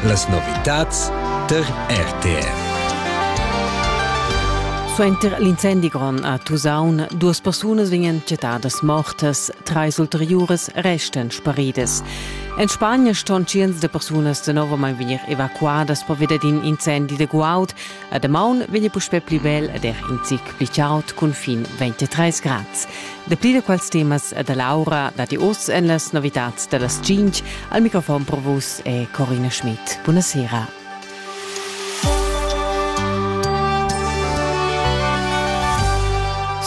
Las novitads tar RTR. Suenter l'incendi grond a Tusaun, duas persunas vegnan chattadas mortas, trais ulteriuras restan sparidas. En Spagna ston tschients da persunas danovamain vegnir evacuadas pervi dad in incendi de guaud, La damaun vegn puspè pli bel ed er in zic pli chaud cun fin 23 grads. Dapli da quels temas da Laura datti oz en las novitads da las 5. Al microfon pro vus è Corina Schmidt. Buonasera.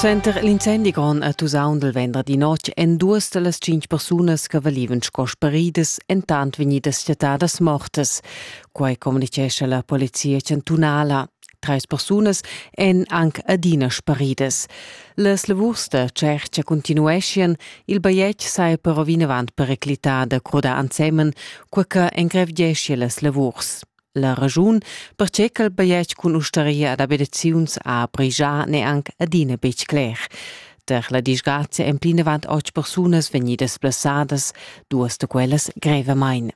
Center l'incendi grond a Tusaun del venderdi notg en duas da las cinc persunas che valivan sco sparidas entant vegnidas chattadas mortas. Quai communitgescha la polizia chantunala. Trais persunas èn anc adina sparidas. Las lavurs da tschertga continueschian, il bajetg saja però vinavant periclità da crudar ensemen, cur che engrevgeschia las lavurs. La ragiun, pertge ch'il bajetg cun ustaria ad abitaziuns ha brigià n'è anc adina betg cler. Per la disgrazia èn plinavant otg persunas vegnidas plasadas, duas da quellas grevamain.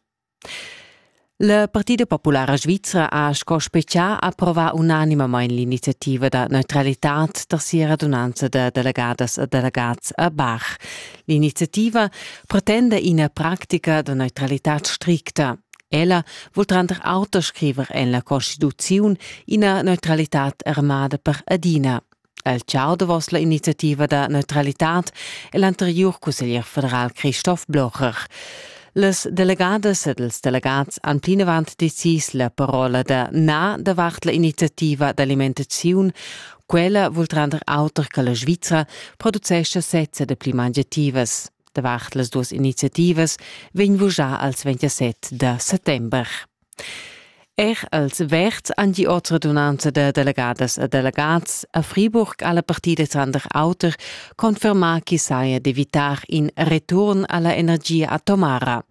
La Partida populara svizra ha sco specià approvà unanimamain l'iniziativa da neutralitad da sia radunanza da delegadas e delegats a Bach. L'iniziativa pretenda ina pratica da neutralitad stricta. Ella vul tranter auter scriver en la Constituziun ina neutralitad armada per adina. El chau davos la iniziativa da neutralitad e l'anteriur cusseglier federal Christoph Blocher. Las delegadas ed ils delegats han plinavant decis la parola da na davart la iniziativa d'alimentaziun. Quella vul tranter auter che la Svizra producescha sezza de pli mangiativas. Davart las duas iniziativas vegn vugià als 27 da settember. Er els Verds han die ordredunanza da delegadas e delegats a Friburg alla partida tranter auter confermà chi saja d'evitar in return alla energia atomara.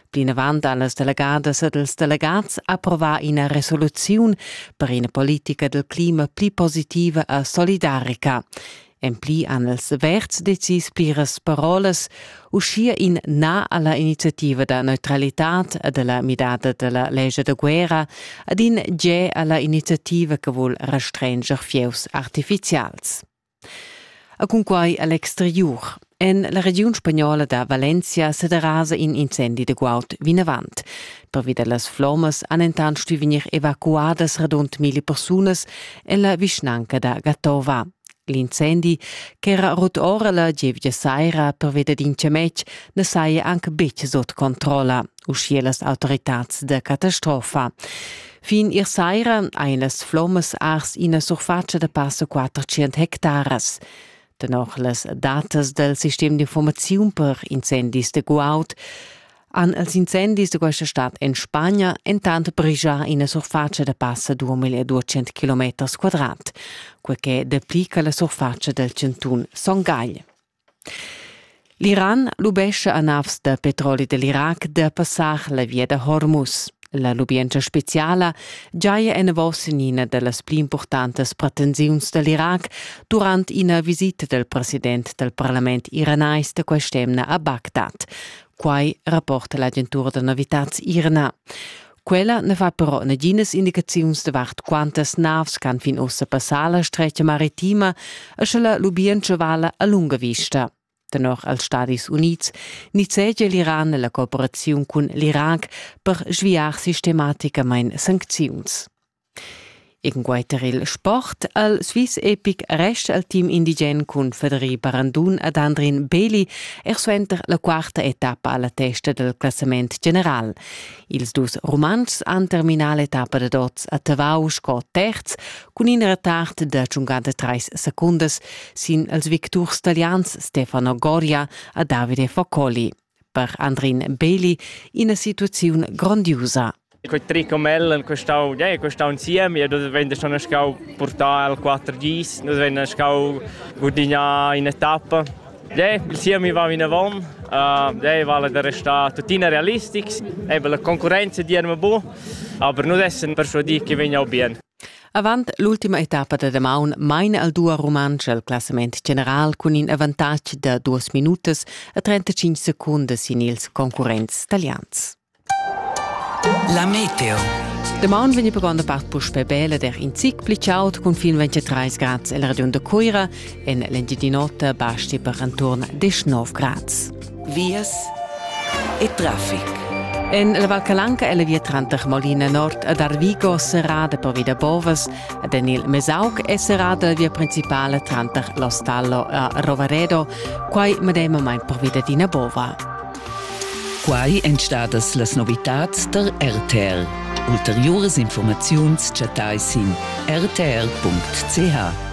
Plinavant ha las delegadas ed els delegats approva ina resoluziun per ina politica del clima pli positiva e solidarica. En pli han els avert decis pliras parolas, uschia in na alla iniziativa da neutralitad e della midada della legge da guerra ad in ge alla iniziativa che vuol restranger fieus artificials. A cunquai a l'exteriur En la regiun spagnola da Valencia sederasa in incendi de guaud vinavant. Pervi da las flommas han entant stuì vegnir evacuadas radund mille persunas en la vischnanca da Gatova. L'incendi, ch'era rut ora la gievgia saira pervi da in cemetg, na saja anc betg sut controlla, uschia las autoritads da catastrofa. Fin ir saira ein las flommas ars ina surfatscha da passa 400 hectaras. Tenor las datas dal sistem d'informaziun per incendis de Guaud han els incendis de questa stad en Spagna entant brigia ina surface da passa 2200 km quadrat, quel che deplica la surface del Centun Son Gagl. L'Iran lubescha a navs da petroli dell'Irac da passar la via da Hormuz. La lubientscha speciala giaja enavos in ina dallas pli importantas pretensiuns dall'Irac durant ina visita del president del parlament iranais da quest'emna a Bagdad. Quai rapporta l'agentura da novitads Irna. Quella ne fa però naginas indicaziuns davart quantas navs ch'han fin ussa passà la stretga maritima e sche la lubientscha vala a lunga vista. Tenor als Stadis Unids nizzegia l'Iran la cooperaziun cun l'Irac per sviar sistematicamain sancziuns. Egunquei tar il sport al Swiss Epic resta il team indigen cun Federi Barandun ed Andrin Beli er suenter la quarta etappa alla testa del classament general. Ils dus Rumantschs han terminà l'etappa da dots a Tavau sco terz cun in retard da giungada treis secundas sin els victurs talians Stefano Goria e Davide Focoli. per Andrin Beli ina situaziun grondiusa. Quei trick con el costau, ja, costau insieme, ja, das wenn schon schau portar al 4Gs, das wenn schau gudignare in etappa. Ja, il siemi va vinavon, uh, ja, vale da restare tuttina realistics, eben la concorrenza dirma bu, aber nur dessen persuadir che vegna bien. Avant l'ultima etappa da damaun maina il dua rumantsch al classament general cun in avantatg da duas minutas e 35 secundas sin ils concurrents talians. La meteo. Damaun vegni per gronda part puspè bella der in zic pli chaud cun fin 23 grads el Radion da Cuira. En l'Engiadin'Ota basti per enturn 19 grads. vias e traffic. En la Val Calanca è la via tranter Molina Nord ed Arvigo serrada per via da Bovas ed en il Mesauc è serrada la via principala tranter l'Ostallo e Rovaredo, quai medemamain per via d'ina bova. Quai èn stadas las novitads der RTL. Ulteriuras informaziuns chattai sin rtr.ch.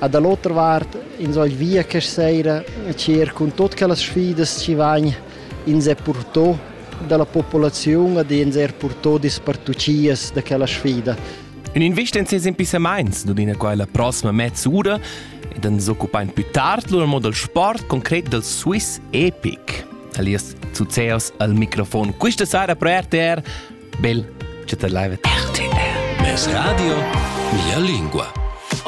E da l'otra vart ins vegl via questa seira a tschêr cun tut quellas sfidas chi vain ins er purtò da la populaziun ed ins er purtò dispartuchias da quella sfida. Ün invist in ses impissamaints nun ina quella prossima mezz'ura ed ans occupain più tard lur modo del sport concret del Swiss Epic. Alias Zuzeos al microfon questa sera pro RTR. Bel ciatelaivet. RTR. Mes radio, mia lingua.